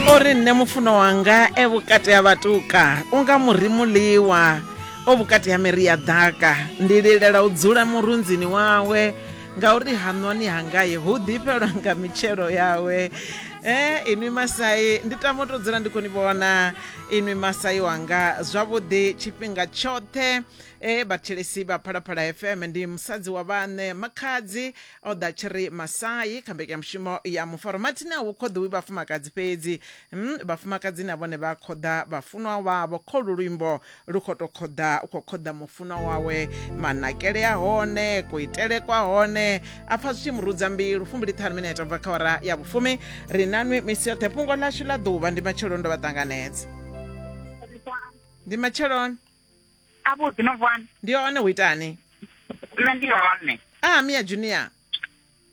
o ri nṋe mufuno wanga e vhukati ha vhatuka u nga muri muḽiwa o vhukati ha miri ya ḓaka ndi lilela u dzula murunzini wawe ngauri haṋwani hangaye hu ḓifhelwa nga mitshelo yawe e inwi masai ndi tama u tou dzula ndi khou ni vhona inwi masai wanga zwavhuḓi tshifhinga tshoṱhe e vhathetshelesi vha phalaphala fm ndi musadzi wa vhaṋe makhadzi O ḓa tshi ri Masayi kha mbekanyamushumo ya Mufaromati na hu khoḓiwi vhafumakadzi fhedzi, mm, vhafumakadzi na vhone vha khoḓa vhafunwa wavho. Kholu luimbo lu khou tou khoḓa, u khou khoḓa mufunwa wawe. Manakele a hone, kuitele kwa hone, a pfa zwi tshi mu rudza mbilu. Fumbiliṱhanu minete bva kha hora ya vhufumi, ri na nwi misi yoṱhe. Fhungo ḽashu ḽa ḓuvha ndi matsheloni ndo vha ṱanganedza. Ndi matsheloni. a vhuḓi no vuwani ndi hone hu itani nṋe ndi hone a mia junior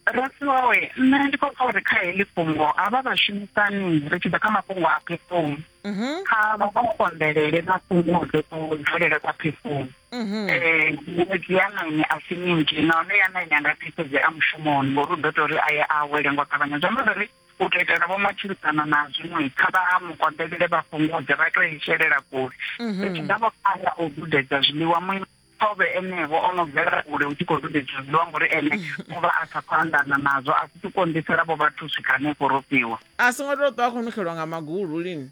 rasiwawe nṋe ndi khou pfa uri kha heḽi fhungo havha vhashumisani ri tshi ḓa kha mafhungo a phefumi mhm. kha vha vha konḓelele vha fhungudze kudzulele kwa phefumi um miṅwedzi ya naine a si minzhi nahone ya naine a nga pfisedzea mushumoni ngori u ḓo tou ri a ye a awele ngo ṱavhanya zwi amba zwa uri u tou itela vho matshilisano na zwiṅwe kha vha ha mukonḓelele vha fhungudze vha tou ishelela kule mhm. ri tshi ḓa vho khala u dudedza zwiḽiwa muimo ṱhovhe enevho o no bvela kule u tshi khou dudedza zwiḽiwa ngori ene mhm. u vha a sa khou anḓana nazwo a si tshi konḓisela vho vhathu swika hanefho ro fhiwa a songo tou ṱwa a khou nukhelwa nga magulu lini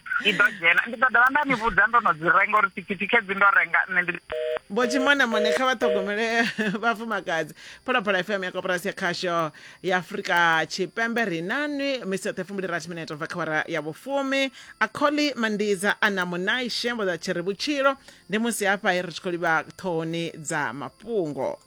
ndi ḓo dzhena ndi ḓo dovha nda ni vhudza ndo no dzi renga uri thikhithi khedzi ndo renga nṋe ndi vho tshimonamone kha vha ṱhogomele vhafumakadzi phalaphala fm ya koporasi ya khasho ya afurika tshipembe ri nanwi misoṱhe fumbulirathi minete bva kha wara ya vhufumi a kholi mandiza a na munai shembo dza tshi ri vhutshilo ndi musi hafha ri tshi khou livha ṱhohoni dza mafhungo